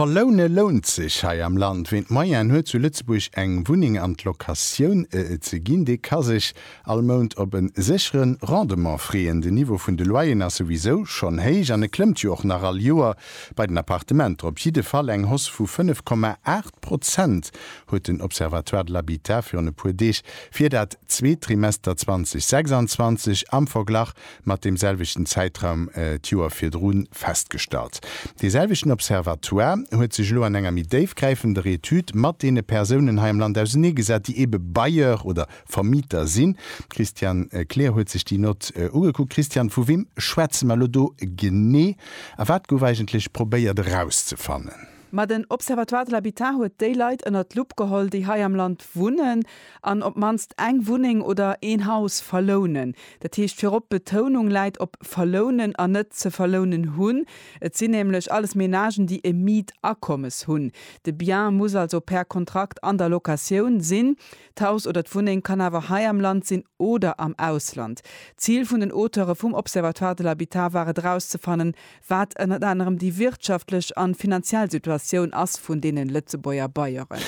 Verloune lount sech hei am Land. Ween d'Moyenë huet zu Lëtzebuerg eng Wunneng an d'Locatioun ze ginn, dee ka sech all Mount op e séchere Rendement freeën. Den Niveau vun de Loyeren ass souwisou schonn héich an e klëmmt jo och nach all Joer. Bei den Appartementer op jidde Fall eng Hausse vu 5, 8 Prozent, huet den Observatoire de l'habitat virun e puer Deeg fir dat zweet Trimester 2026 am Verglach mat deem selwechten Zäitraum d'Joer virdru festgestallt. Dee selwechten Observatoire huet sech elo an enger méi déifgräifender Etüd mat deene Persounen hei am Land auseneegesat, déi ebe Bailleur oder Vermieter sinn. D'Christiane Kleer huet sech déi Nott ugekuckt. Christiane, vu wem schwätze mer elo do genee a wat gouf eigentlech probéiert erauszefannen? Ma den Observatoire de l'habitat huet déi Leit ënnert d'Lupp geholl, déi hei am Land wunnen an op d'mannst eng Wunneng oder een Haus verlounen. Dat heescht virop, d'Betounung läit op verlounen an net ze verlounen hunn. Et sinn nämlech alles Menagen, déi e Mietakommes hunn. De Bien muss also per Kontrakt an der Locatioun sinn. D'Haus oder d'Wunneng kann awer hei am Land sinn oder am Ausland. D'Zil vun den Auteure vum Observatoire de l'habitat war et erauszefannen, Wat ënnert anerem déi wirtschaftlech an finanziell Situatioun ass vun deenen Lëtzebuerger Baieren.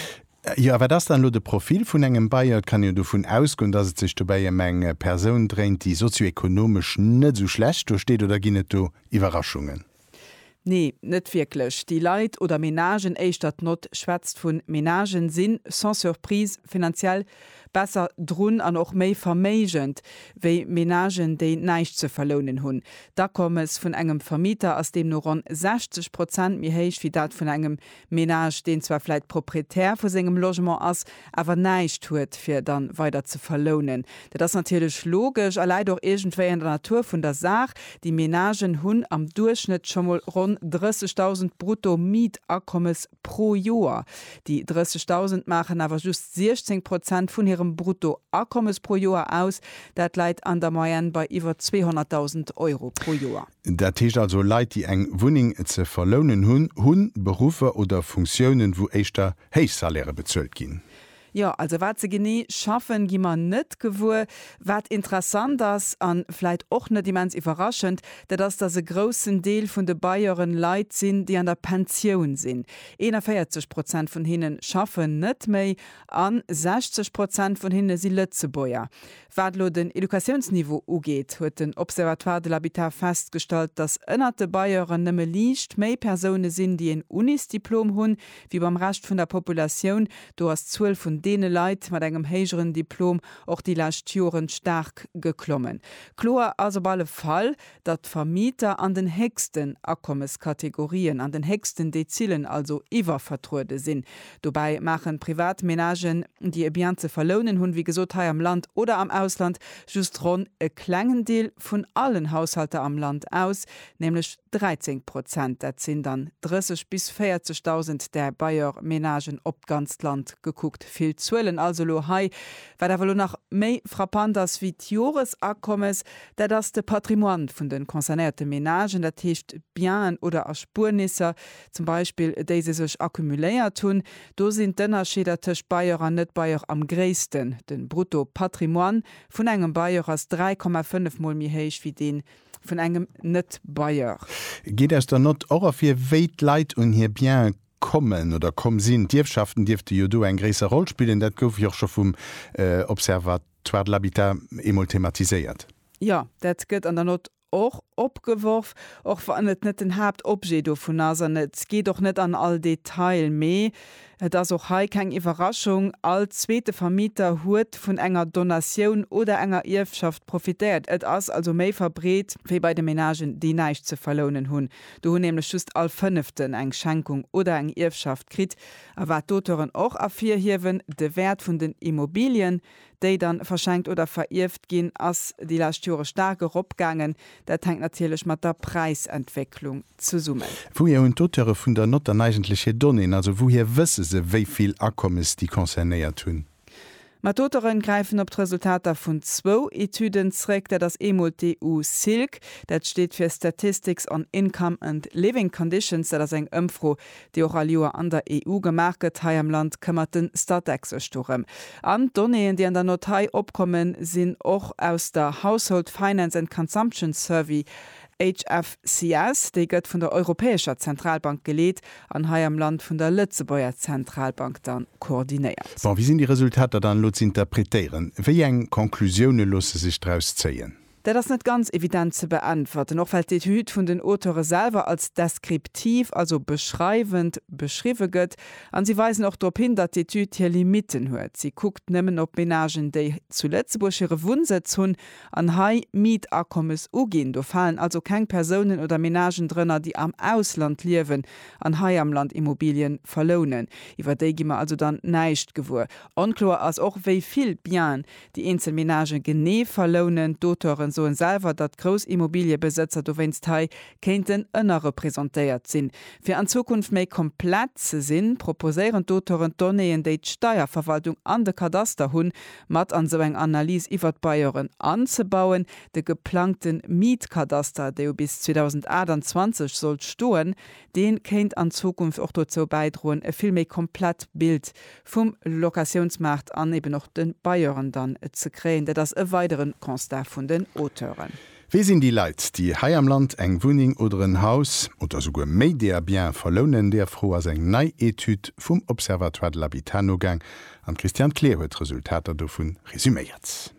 Jo, a wat ass dann elo de Profil vun engem Baier? Et kann een jo dovun ausgoen, dass et sech dobäi ëm eng Persoun dréint, déi sozioekonomesch net esou schlecht do steet, oder ginn et do Iwwerraschungen? Nee, net wierklech. Déi Leit, oder Menagen éischter, d'Nott schwätzt vu Menagen, sinn sans surprise finanziell Besser drun an och méi verméigend wéi Menagen, déi näischt ze verlounen hunn. D'Akommes vun engem Vermieter ass deemno ronn 60 Prozent méi héich wéi dat vun engem Menage, deen zwar vläit Proprietär vu sengem Logement ass, awer näischt huet, fir dann weider ze verlounen. Dat ass natierlech logesch a läit och iergendwéi an der Natur vun der Saach. Déi Menagen hunn am Duerchschnëtt scho mol ronn 30.000 brutto Mietakommes pro Joer. Déi 30.000 maachen awer just 16 Prozent vun hirem Bruttoakommes pro Joer aus. Dat läit an der Moyenne bei iwwer 200.000 Euro pro Joer. Dat heescht also, Leit, déi eng Wunneng ze verlounen hunn, hu Beruffer oder Funktiounen, wou éischter héich Salairë bezuelt ginn. Jo, also wat se genee schaffen, gi mer net gewuer. Wat interessant ass, a vläit och net immens iwwerraschend, dat ass, dass e groussen Deel vun de Bailleuren Leit sinn, déi an der Pensioun sinn. 41 Prozent vun hinne schaffen net méi a 60 Prozent vun hinne si Lëtzebuerger. Wat elo den Educatiounsniveau ugeet, huet den Observatoire de l'habitat festgestallt, datt ënnert de Bailleuren nëmme liicht méi Persoune sinn, déi een Unisdiplom hunn, wéi beim Rescht vun der Populatioun. Do ass d'Zuel vun deene Leit mat engem héijeren Diplom och déi lescht Joren staark geklommen. Kloer ass op alle Fall, datt d'Vermieter an den héchsten Akommeskategorien, an den héchsten Dezilen also, iwwervertruede sinn. Dobäi maachen privat Menagen, déi e Bien ze verlounen hunn, wéi gesot hei am Land oder am Ausland, just ronn e klengen Deel vun allen Haushalter am Land aus, nämlech 13 Prozent. Dat sinn dann 30 bis 40.000 der Bailleurs ménagen op d'ganzt Land gekuckt. Vill Zuelen also elo hei. Wat awer elo nach méi frappant ass wéi d'Joresakommes, Dat ass de Patrimoine vun de concernéierte Menagen, dat heescht d'Bienen oder Erspuernisser zum Beispill, déi se sech accumuléiert hunn. Do sinn d'Ënnerscheeder tëscht Bailleur an Net-Bailleur am gréissten. De Brutto-Patrimoine vun engem Bailleur ass 3,5 Mol méi héich wéi dee vun engem Net-Bailleur. Geet aus der Nott och ervir, wéi d'Leit un hir Biene kommen oder komm sinn. D'Ierfschaften dierfte jo do eng gréisser Roll spillen, dat gouf jo och scho vum Observatoire Zwar de l'habitat eemol thematiséiert. Jo, dat gëtt an der Nott och opgeworf, och wann et net den Haaptobjet dovun ass an et geet och net an all Detail. Mee et ass och hei keng Iwwerraschung, All zweete Vermieter huet vun enger Donatioun oder enger Ierfschaft profitéiert. Et ass also méi verbreet wéi bei de Menagen, déi näischt ze verlounen hunn. Do hunn nämlech just all Fënneften eng Schenkung oder eng Ierfschaft kritt. A wat d'Auteuren och ervirhiewen, de Wäert vun den Immobilien, déi da verschenkt oder verierft ginn, ass déi lescht Jore staark eropgaangen. Dat hänkt natierlech mat der Präisentwécklung zesummen. Wouhier hunn d'Auteure vun der Nott dann eigentlech hir Donnéeën? Also wouhier wësse se, wéi vill Akommes déi concernéiert hunn? Ma d'Auteuren gräifen op d'Resultater vun zwou Etüden zréck. Dat ass eemol d'EU Silk, dat steet fir Statistics on Income and Living Conditions, dat ass eng Ëmfro, déi och all Joer an der EU gemaach gëtt. Hei am Land këmmert de Statec sech dorëm. An d'Donnéeën, déi an der Nott hei opkommen, sinn och aus der Household Finance and Consumption Survey HFCS, déi gëtt vun der Europäescher Zentralbank geleet an hei am Land vun der Lëtzebuerger Zentralbank da koordinéiert. Bon, wéi sinn déi Resultater dann elo z'interpretéieren? Wéi eng Conclusioune loosse sech draus zéien? Dat ass net ganz evident ze beäntwerten, och well d'Etüd vun den Auteure selwer als deskriptiv, also beschreiwend, beschriwwe gëtt. A si weisen och drop hin, datt d'Etüd hir Limitten huet. Si kuckt nëmmen op Menagen, déi zu Lëtzebuerg hire Wunnsëtz hunn An hei Mietakommes uginn. Do falen also keng Persounen oder Menagen drënner, déi am Ausland liewen an hei am Land Immobilien verlounen. Iwwer déi gi mer also dann näischt gewuer. Onkloer ass och, wéi vill Bienen déi eenzel Menagen genee verlounen. D'Auteuren soen selwer, datt grouss Immobiliebesëtzer dowéinst hei kéinten ënnerrepresentéiert sinn. Fir an Zukunft méi komplett ze sinn, proposéieren d'Auteuren d'Donnéeën, déi d'Steierverwaltung an de Kadaster hunn, mat an esou eng Analys iwwert d'Bajoren anzebauen. De geplangte Miet-Kadaster, dee jo bis 2028 sollt stoen, dee kéint an Zukunft och dozou bäidroen, e vill méi komplett Bild vum Locatiounsmaart an eben och de Bajoren dann ze kréien. Dat ass e weidere Constat vun den Auteuren. Wie sinn déi Leit, déi hei am Land eng Wunneng oder en Haus, oder souguer méi deeër Bien verlounen? Deeër Fro ass eng nei Etüd vum Observatoire de l'habitat nogaang an d'Christiane Kleer huet d'Resultater dovun resuméiert.